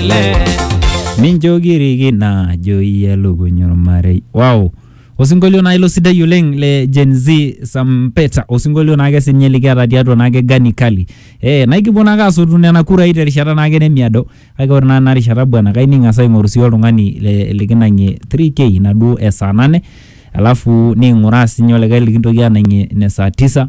le mincho kiriki naajo iyie elukuny ormarei wow osinkolio naa ilo sidai oleng le Gen Z Sampeta osinkolio naake sinye likiata tiatua naake Gani Kali eh naikipuo naake asotu nena kurai terishata naake nemiado kake ore naa ena rishata bwana kai ning'as aing'oru sii oltung'ani le- likinang'ie 3k inaduo esaa nane alafu ning'uraa sinye olikae likintoki anang'ie ine saa tisa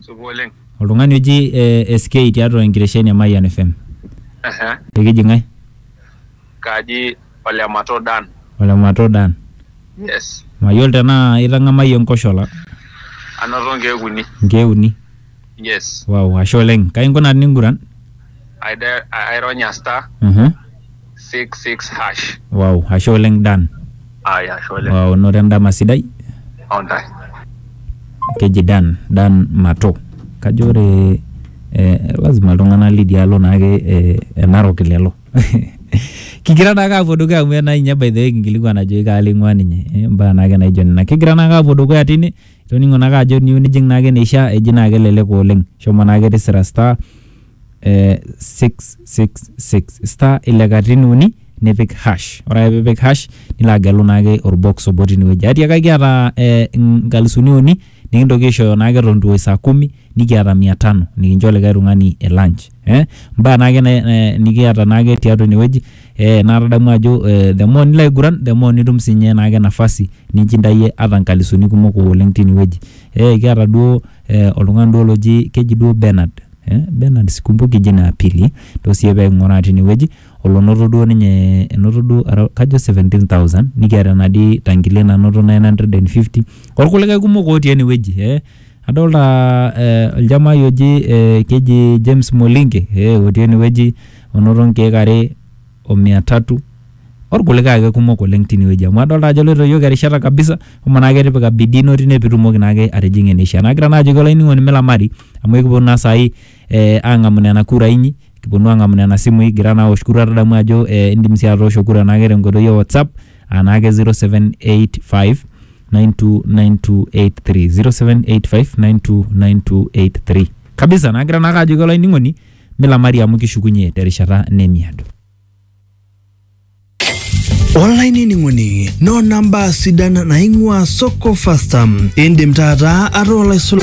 Supa oleng. Oltung'ani oji eh, SK tiatua enkitesheni e Mayian FM. Ehe. Ekiji ng'ae? Kaji ole Mato Dan. Ole Mato Dan. Yes. Mayiolo tenaa itang'amayie enkoshola. Anoto nkeek uni. Nkeek uni. Yes. Wow, ashe oleng. Kai inkunaa tiniguran? Aironya star. Uh-huh. 66 hash wow ashe oleng dan aya ashe oleng wow noto endama sidai ontae keji dan dan mato kajo ore eh, lazima iltung'anak lidialo naake eh, enarok lelo kigira naake apuo dukuya amu ena ninye by the way kinkilikuan ajoki kaalo ing'ua ninye Eh, mbaa naake naijo nena kigira naake apuo dukuya tine toning'o naake ajo niu nijing naake neisha eji naake elelek oleng shomo naake tisira star eh, 666 star ile katitin uni nipik hash ore ake piipik hash nilo agelu naake orbox obo tinewueji atiaka kiata eh, nkalisuni uni nikintoki aishooyo naake eton itu eoi saa kumi nikiata mia tano nikincho likae tung'ani e lunch eh, mbaa naake na, eh, nikiata naake tiatua inewueji eh, naa tadamu ajo eh, the more nilo aiguran the more nitum sinye naake nafasi ninchindayie ata nkalisuni kumok oleng tinewueji eh, kiata duo eh, oltung'ani duo loji keji duo Bernard Eh, Bernard sikumbuki jina ya pili to siye pee king'uraa tinewueji olonoto duo ninye enoto duo ara- kajo 17000 nikiata enadi tangilia nanoto 950 orkulikae kumok otii enewueji eh, adolta eh, oljamai oji eh, keji James Molinge eh, otii enewueji onoto nkeek are o mia tatu orkulikae ake kumok oleng tinewueji amu adolta ajo eloito iyiok erishata kabisa homo naake tipika bidii ino tine pitumoki naake atijing'a eneishia nagira naa ajoki olainining'oni milamari amu ekiponu naa sai eh, ang'amu nena kurai inyi kiponu ang'amu nena simui igira naa awosh kura tadamu ajo eh, indim sii atoosho kura naake tenkoitoi e WhatsApp anaake 0785 929283 0785 929283 kabisa nagira naake ajoki olainining'oni Milamari amu kishukunye terishata nemiado. olainining'oni noona mbaa sidan naing'ua soko fasta indim taata ataa olaisul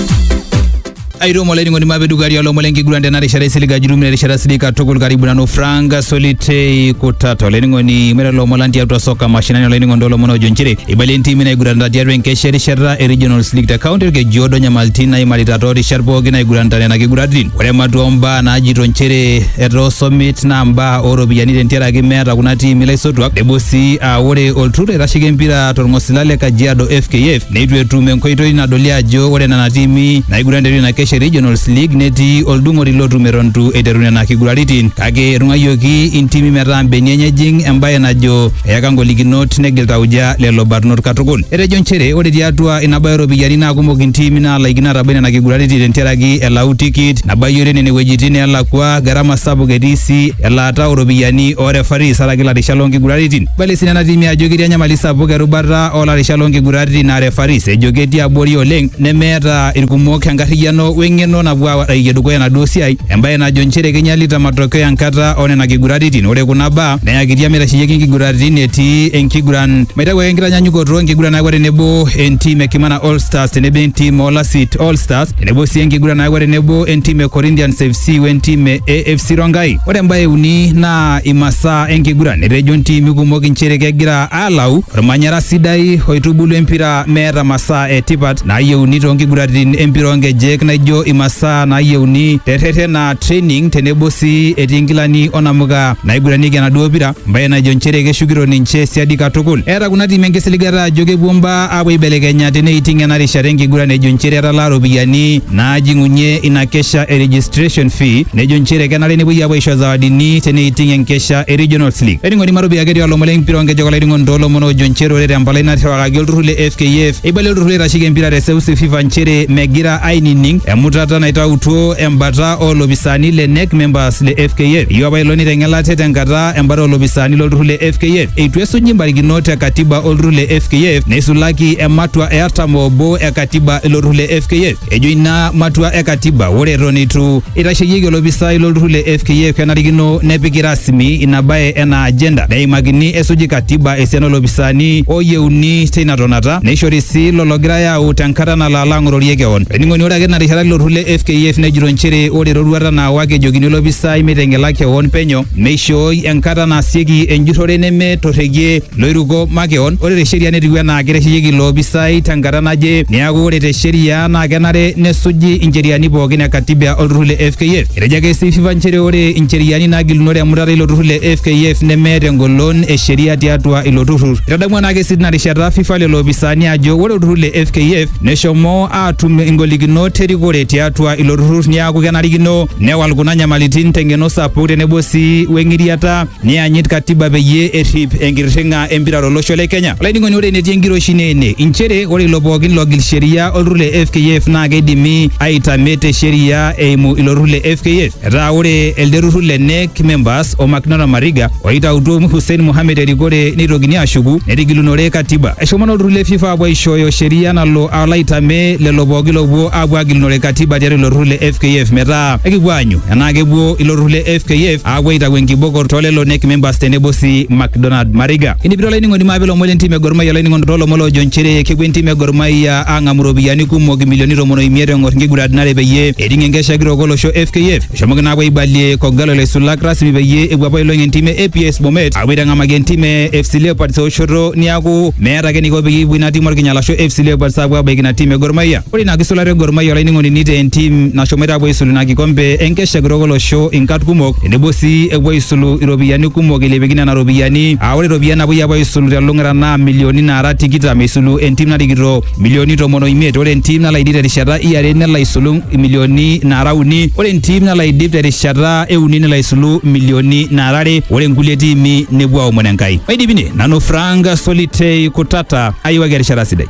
airemo olainining'oni mapedukari olomon lenkiguran tena rishata isilig ajurum ina rishata silig katukul karibu nanu frank solitei kutata olainining'oni mera lomon lang tiatua soka mashinani olainining'oni tolomon ojo nchere eibalie ntimi naiguranita tiatua enkesha erishata e regionals league te county orkejiodo nyamalitin naimarita toorishat pooki naiguranita nena kiguratin Ore ematua ombaa naajito nchere etaa osomit naa mbaa ooropiyiani tentiaraki meeta kuna tiimi laisotuak nebo sii aa ore olturrur oitasheki empira torng'osila le Kajiado FKF neitu etum enkoitoi nadoli ajo ore nena tiimi naiguran tiatua ina kesha e Regionals League netii oldung'oti lotum eton itu eiteru nena kiguraritin kake etung'uayioki intimi metaa mbenia enye ejing embae najo Eyaka ngolikinot negil tauja lelo barnot katukul. Etejo nchere ore tiatua ina bae ooropiyiani naa kumok intiimi naalaikino aatabai nena kiguraritin tentiaraki elau tikit nabayiore nene wuejitin neelakua, garama sapuk etii sii elaata ooropiyiani oo refaris araki larishat loo nkiguraritin. Eibalie sii nena tiimi ajo ketii enyamali sapuk erubata oo larishat loo nkiguraritin aa refaris ejo ketii abori oleng nemeeta ilkumok enkarriyiano we ng'eno napuo aarayie dukuya enaduo siai embae najo nchere keinyalita matokeo enkata oo nena kiguraritin. Ore kuna baa Neyakitia meitasheyieki inkiguraritin etii enkiguran maitaku ake enkitanyanyukoto enkiguran nayawua tenebo entim e Kimana All Stars tenebo entim o Lasit All Stars tenebo sii enkiguran nayawua tenebo entim e Corinthians FC we ntim e AFC Rongai. Ore embae e uni naa imasaa enkiguran. Etejo ntimi kumok inchere kegira aalau ormanyara sidai oitubulu empira meeta masaa e tipat naayieuni too nkiguraritin empira oo nkejek naijo imasaa naayieuni te rreten aa training tenebo sii etii nkilani o namuka naiguranieki enaduo pira mbae najo nchere keshukito ninche siadi katukul. Eeta kuna tiimi enkisiligata ajo kepuo mbaa apuo aibelekenya teneiting ena rishata enkiguran ejo nchere etalaa ropiyiani naajing'unye ina kesha e registration fee nejo nchere kenare nepuoi apuo aisho zawadini teneiting enkesha e Regionals League. Enining'oni Maropia ketii olomon lempira oonkejek olainining'oni toolomon oojo nchere ore tempalai naterewakaki olturrur le FKF eibalie olturrur oitasheki empira te seuseu FIFA nchere megira ainining emutata naitautuo embata oolopisaani le Knec members Awards le FKF. Eyieu apa ilo neiteng'elate tenkata embata oolopisaani lolturrur le FKF. Eitu esuji mbarikinot e katiba olturrur le FKF neisulaki ematua e artam oobo e katiba ilo turrur le FKF. Ejo ina matua e katiba ore eton eitu eitasheyieki olopisai lolturrur le FKF kenarikino nepiki rasmi ina bae enaa agenda neimakini esuji katiba esiana oolopisaani ooyieuni teina tonata neishori sii ilo logirai aau tenkata nalo alo ang'ororie kewon. Olainining'oni ore ake tina rishata ilo turrur le FKF nejito nchere ore eroruata enkata naawa kejokini olopisai meiteng'ela kewon penyo neishooi enkata naasieki enjurrore neme torrekie loiruko makewon. Ore te sheria netiu enaa keitasheyieki ilo opisai tenkata naje neaku ore te sheria naa kenare nesuji incheriani pookin e katiba olturrur le FKF. Etejo ake sii FIFA nchere ore incheriani naagilunore emutata eilo turrur le FKF nemeeta engolon e sheria tiatua ilo turrur. Eitadamua naa ake sii tina rishata FIFA lelo opisaani ajo ore olturrur le FKF Neshomo aatum ingolikinot erikore tiatua ilo turrur niaku kenarikino newal kuna nyamalitin teng'eno sapuk tenebo sii weng'iriata neyanyit katiba peyie errip enkirring'a empira tolosho le Kenya. Olainining'oni ore enetii enkiroshi naa ene inchere ore ilo pookin logil sheria olturrur le FKF naa keidimi aitame te sheria eimu ilo turrur le FKF. Etaa ore elde turrur le NEC members o Macdonald Mariga oitautuo Hussein Mohamed erikore neitokini ashuku netigilunore katiba. Eshomo naa olturrur le FIFA apuo aishooyo sheria nalo alo aitamee lelo pooki loopuo apuo agilunore katiba tiatua ilo turrur le FKF metaa ekipuo aanyu enaa kepuo ilo turrur le FKF apuo aitau enkiboko too lelo NEC members tenebo sii Macdonald Mariga. Kinepito olainining'oni maape ilomon le ntim e Gor Mahia olainining'oni too lomon loojo nchere kepuo entim e Gor Mahia aang'amu iropiyiani kumok imilioni tomon o imiet eng'or nkiguraritin are peyie eting enkesha kitok olosho FKF eshomoki naapuo aibalie Kogalo laisulak rasmi peyie epuo apa ailong entim e APS Bomet apuo aitang'amaki entim e FC Leopards eoshoto niaku meeta ake eniko peyie epuo ina tim orkinyala ashu FC Leopards apuo abaiki ina tim e Gor Mahia. Ore ina kisulata e Gor Mahia olainining'oni nitaa entim nashomoita apuo aisulu ina kikombe enkesha kitok olosho inkat kumok tenebo sii epuo aisulu iropiyiani kumok eilepieki nena ropiyiani aa ore iropiyiani napuoi apuo aisulu telung'ata naa milioni naara tikitam eisulu entim narikito milioni tomon oimiet ore entim nalo aidip terishata iare nelo aisulu milioni naara uni ore entim nalo aidip terishata euni nelo aisulu milioni naara are ore nkulie tiimi nepuo aomon Enkai. Maidip ine, nanu Frank Solitei Kutata ayiwaki erishata sidai.